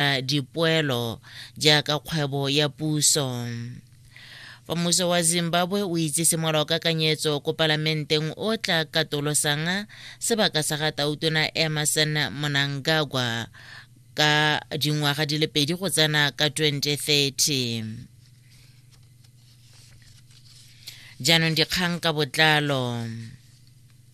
a dipoelo jaaka kgwebo ya puso fa mmuso wa zimbabwe o itsise molao kakanyetso ko palamenteng o tla katolosang sebaka sa ga tautona emerson monangagwa ka dingwaga di le pedi go tsena ka 2030 jaanong dikgang ka botlalo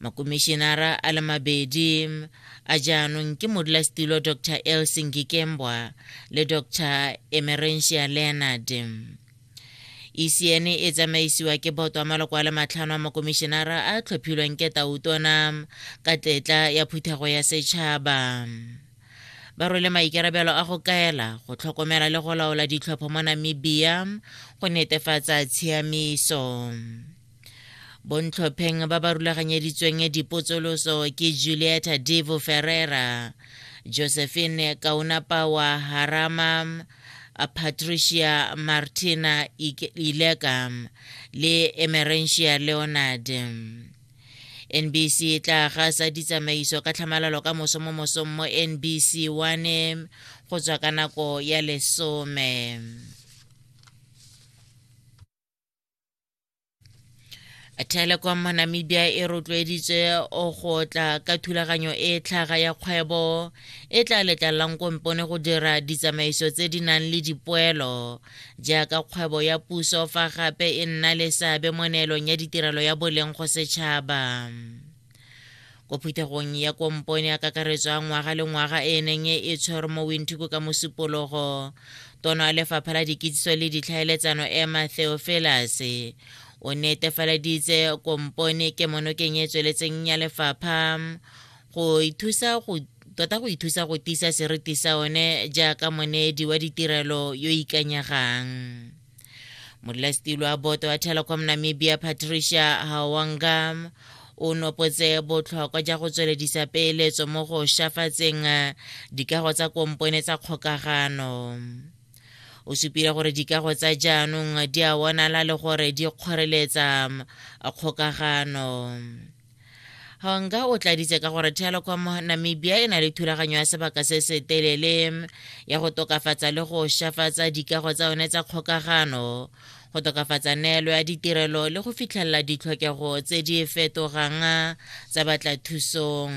makomišenara a le mabedi a jaanong ke modulasetilo dr elson kikembwa le dr emerentia leonard ECN e tsamaisiwa ke boto a maloko a le matlhano a makomišenara a tlhophilweng ke tautona ka tetla ya phuthego ya setšhaba ba rwele maikarabelo a go kaela go tlhokomela le go laola ditlhopho mo namibia go netefatsa tshiamiso bontlhopheng ba ba rulaganyeditsweng dipotsoloso ke julieta devo ferrera josephine kaunapa wa harama patricia martina ileka le emerentia leonard nbc e tla gasa ditsamaiso ka tlhamalalo ka moso mo mosong mo nbc one go tswa ka nako ya lesome telecom namibia e rotloeditse go tla ka thulaganyo e tlhaga ya kgwebo e tla letlalelang kompone go dira ditsamaiso tse di nang le dipoelo jaaka kgwebo ya puso fa gape e nna le seabe mo neelong ya ditirelo ya boleng go setšhaba ko phuthegong ya kompone ya kakaretso ya ngwaga le ngwaga e neng e tshwere mo winthuko ka mosupologo tono ya lefapha la dikitsiso le ditlhaeletsano emma theofelas o netefaleditse kompone ke monokeng e tsweletseng ya lefapha go ithusa go tota go ithusa go tisa seriti sa one jaaka monedi wa ditirelo yo ikanyegang modulasetilo wa boto wa telecom namibia patricia hawangam o nopotse botlhokwa ja go tsweledisa peeletso mo go shafatseng eh, dikago tsa kompone tsa kgokagano o supile gore dikago tsa jaanong di a bonala le gore di kgoreletsa mm, kgokagano Honga o tladitse ka gore Telecom Namibia e na le thulaganyo ya sebaka se se telele ya go tokafatsa le go shafatsa dikago tsa yone tsa kgokagano go tokafatsa neelo ya ditirelo le go fitlhelela ditlhokego tse di fetogang tsa batla thusong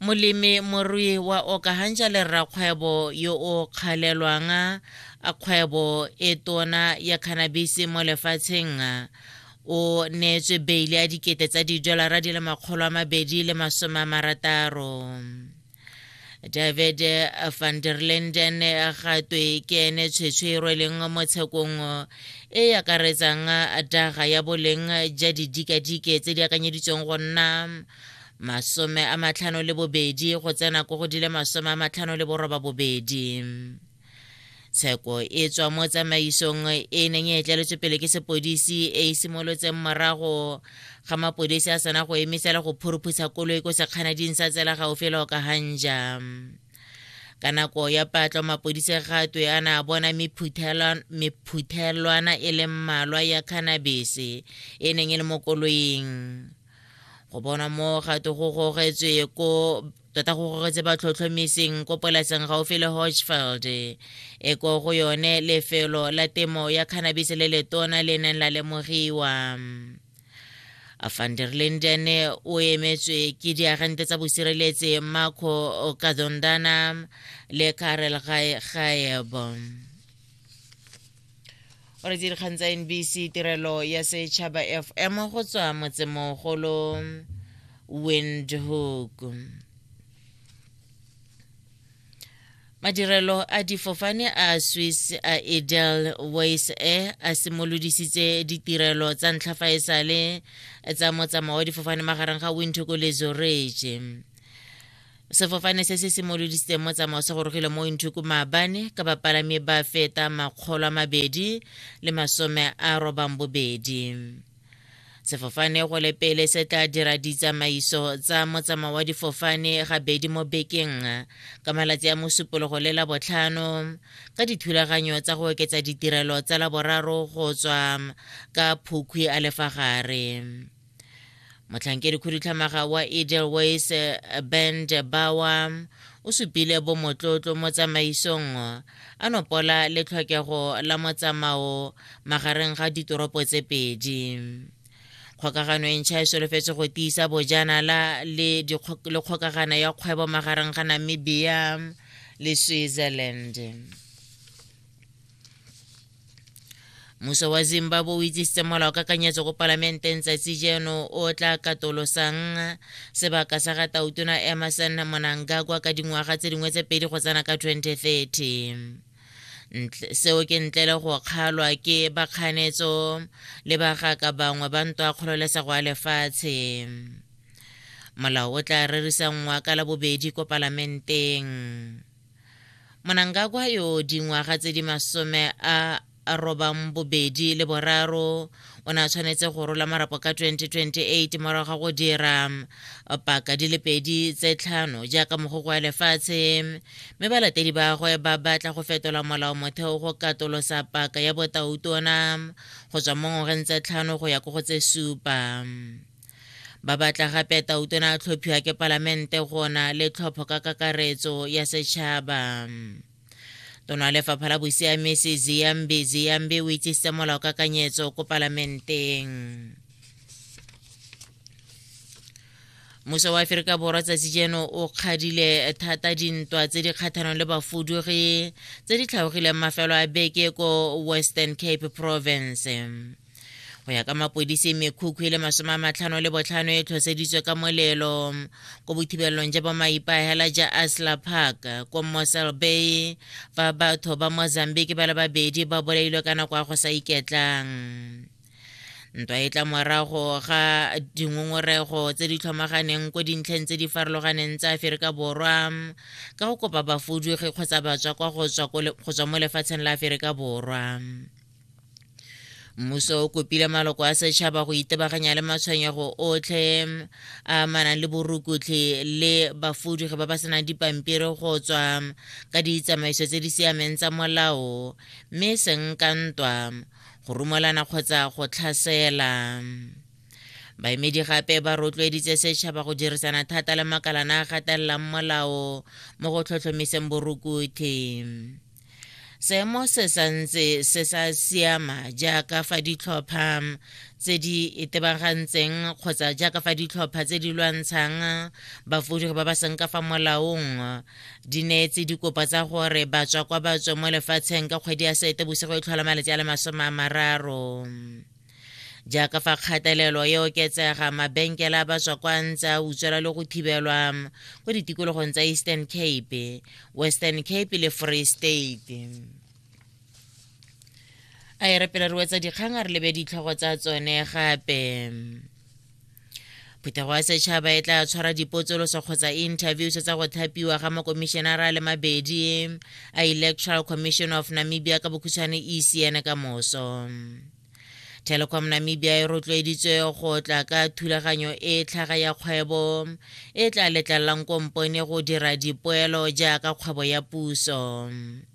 molemi morui wa okahanja le rrakgwebo yo o kgalelwang a kgwebo e tona ya cannabis mo lefatsheng o neetswe beile ya dikete tsa didolara di le makgolo a mabedi le masome a marataro david van der linden ga twe ke ene tshwetshwe e rweleng mo tshekong e e akaretsang daga ya boleng ja didikadike tse di akanyeditsweng go nna masome a matlhano le bobedi go tsena ko go di le masome a matlhano le boroba bobedi tsheko e tswa mo tsamaisong e e neng e tleletswe pele ke sepodisi e e simolotseng morago ga mapodisi a sena go emisela go phuruphutsha koloi ko sekganading sa tsela gaufi le okahanja ka nako ya patlo mapodise gatwe a na a bona mephuthelwana e leng mmalwa ya cannabise e neng e le mo koloing go bona mo gato go gogetswe ko tota go gogetse ba tlhotlhomiseng ko polaseng gaufi le hodgefeld e ko go yone lefelo la temo ya cannabis le letona le neng la lemogiwa van der linden o emetswe ke diagente tsa bosireletsi marco kadondana le karel gaebo o re dikgang tsa nbc tirelo ya setšhaba fm go tswa motsemogolo windhoek madirelo a difofane a swiss a edel wise air a simolodisitse ditirelo tsa ntlha fa e sale tsa motsamao wa difofane magareng ga windhoek le zorege sefofane se se simolodisitseng mo tsamao se gorogile mo inthuku maabane ka bapalami ba feta makgolo a mabedi le masome a robang bobedi sefofane go le pele se tla dira ditsamaiso tsa motsamao wa difofane gabedi mo bekeng ka malatsi a mosupologo le la botlhano ka dithulaganyo tsa go oketsa ditirelo tsa laboraro go tswa ka phukhwi a lefagare motlhankedi khudutlhamaga wa edelways eh, ben bawa o supile bomotlotlo mo tsamaisong a nopola le tlhokego la motsamao magareng ga ditoropo tse pedi kgokagano e ntšha e solofetse go tiisa bojanala le kgokagano ya kgwebo magareng ga namibia le switzerland Muso wa Zimbabwe o itsisitse molao ka kanyetso ko palamenteng tsatsi jeno o tla katolosang sebaka sa ga tautona Emerson Monangagwa ka dingwaga tse dingwe tse pedi go tsena ka 2030 seo ke ntle le go kgalwa ke bakganetso le bagaka bangwe ba ntwa kgololesego ya lefatshe molao o tla rerisanngwa ka labobedi ko palamenteng Monangagwa yo dingwaga tse di masome a robang bobedi le boraro o ne a tshwanetse go rola marapo ka 2028 morago ga go dira paka di le pedi tse tlhano jaaka mogoko ya lefatshe mme balatedi bagwe ba batla go fetola molao motheo go katolosa paka ya botautona go tswa mo ngwageng tse tlhano go ya ko go tse supa ba batla gape tautona a tlhophiwa ke palamente gona le tlhopho ka kakaretso ya setšhaba tona lefapha la bosiamisi ziyambi ziyambi o itsisitse molao kakanyetso ko palamenteng muso wa aferika borwa tsatsi jeno o kgadile thata dintwa tse di kgathanong le bafudugi tse di tlhaogileng mafelo a beke ko western cape province go ya ka mapodisi mekhukhu e le masome a matlhano le botlhano e tlhoseditswe ka molelo ko bothibelelong ja bomaipaegela ja asla park ko mosel bay fa batho ba mozambique ba le babedi ba bolailwe ka nako ya go sa iketlang ntwa e tla morago ga dingongorego tse di tlhomaganeng ko dintlheng tse di farologaneng tsa aferika borwa ka go kopa bafudugi kgotsa batswa kwa go tswa mo lefatsheng la aferika borwa mmuso o kopile maloko a setšhaba go itebaganya le matshwenyego otlhe a manang le borukutlhi le bafudugi ba ba senang dipampiri go tswa ka ditsamaiso tse di siameng tsa molao mme seng ka ntwa go rumelana kgotsa go tlhasela baemedi gape ba rotloeditse setšhaba go dirisana thata le makalana a gatelelang molao mo go tlhotlhomiseng borukutlhi seemo se santse se sa siama jaaka fa ditlhopha tse di itebagantseng kgotsa jaaka fa ditlhopha tse di lwantshang bafodi ba ba seng ka fa molaong di neetse dikopa tsa gore batswa kwa batswa mo lefatsheng ka kgwedi ya sete bosigo e tlhola malatsi a le masome a mararo Jaaka fa kgatelelo e oketsega, mabenkele a baswa kwa ntse a utswela le go thibelwa kwa ditikologong tsa Eastern Cape, Western Cape le Free State a e re pele re wetsa dikgang a re lebe ditlhogo tsa tsone gape phetogo ya setšhaba e tla tshwara dipotsoloso kgotsa interviews tsa go thapiwa ga makomišenara le mabedi a electoral commission of namibia ka bokhutshwane ecn ka moso telecom namibia e rotloeditswe go tla ka thulaganyo e tlhaga ya kgwebo e tla letlalelang kompone go dira dipoelo jaaka kgwebo ya puso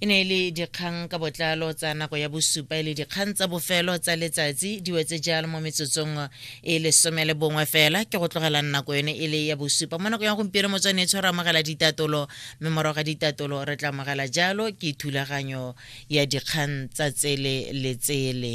E ne e le dikgang ka botlalo tsa nako ya bosupa e le dikgang tsa bofelo tsa letsatsi di wetse jalo mo metsotsong e lesome le bongwe fela ke go tlogela nako yone e le ya bosupa mo nako ya gompieno motswane e tshwara amogela ditatolo mme morago ga ditatolo re tla amogela jalo ke thulaganyo ya dikgang tsa tsele le tsele